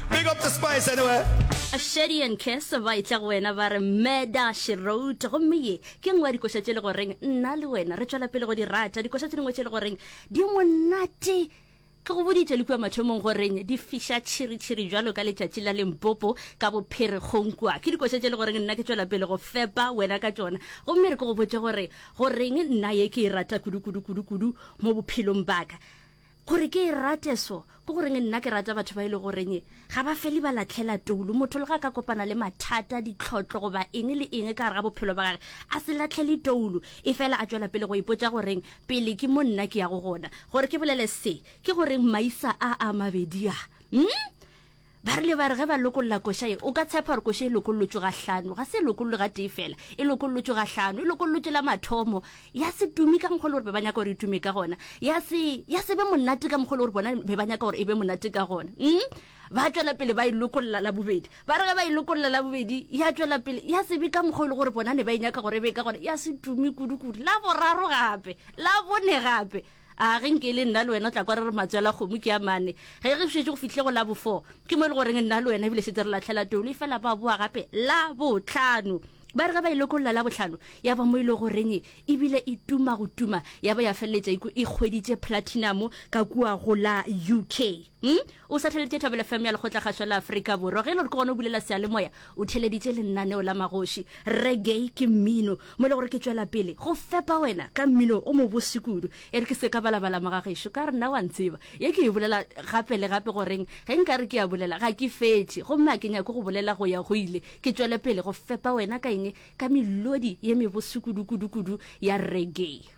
Big up the spice anyway. A Shady and Kes ba itla go wena ba re Meda she wrote gomme ye ke nngwe ya dikoša tše le go reng nna le wena re tšwela pele go di rata dikoša tše dingwe tše le go reng di monate ke go boditše le kua mathomong go reng di fiša tšhiritšhiri jalo ka letšatši la lempopo ka bopherekgong kua ke dikoša tše le go reng nna ke tšwela pele go fepa wena ka tšona gomme re ke go botše gore go reng nna ye ke e rata kudu kudu kudu kudu mo bophelong baka Gore ke e rate so, ke goreng nna ke rata batho ba e le goreng ga ba fele ba latlhela toulu. Motho le ga a ka kopana le mathata, ditlhotlo goba eng le eng ka gare ga bophelo ba gage, a se latlhele toulu, efela a tšwela pele go ipotša gore, Pele ke mo nna ke yago gona. Gore ke bolele se, ke goreng maisa a a mabedi a, hm, Ba rile ba re ge ba lokolola koša ye, o ka tshepa gore koša e lokololotšwe ga hlano, ga se e lokololwe ga tee fela, e lokololotšwe ga hlano, e lokololotšwe la mathomo, ya se tumi ka mokgwa le gore be ba nyaka gore e tume ka gona, ya se, ya se be monate ka mokgwa le gore bona be ba nyaka gore e be monate ka gona. Umm, ba tšwela pele ba e lokolola la bobedi. Ba re ge ba e lokolola la bobedi, ya tšwela pele, ya se be ka mokgwa le gore bona ne ba e nyaka gore e be ka gona, ya se tumi kudu-kudu. La boraro gape, la bone gape. A ge nke e le nna le wena o tla kwa re re matswela kgomo ke a mane. Ge re šetše go fihle go la bo four, ke mo e le goreng nna le wena ebile šetse re latlhela Tolu efela ba boa gape la botlhano. Ba re ge ba e lokolla la botlhano ya ba mo e le goreng ebile e tuma go tuma ya ba ya feleletša e kgweditše platinum ka kua go la UK. Umm o satheleditše Thobela FM ya Lekgotlakgašwa la Afrika Borwa. Ge e le gore ke gona o bulela seyalemoya, o theleditše lennaneo la magoši. Reggae ke mmino mo e le gore ke tšwela pele go fepa wena ka mmino o mobose kudu. E re ke se ka balabala moga gešo ka re nna wa ntseba. Ye ke e bolela gape le gape goreng ge nka re ke a bolela ga ke fetše gomme ga ke nyake go bolela go ya go ile. Ke tšwele pele go fepa wena ka eng? Ka melodi ye mebose kudu kudu kudu ya reggae.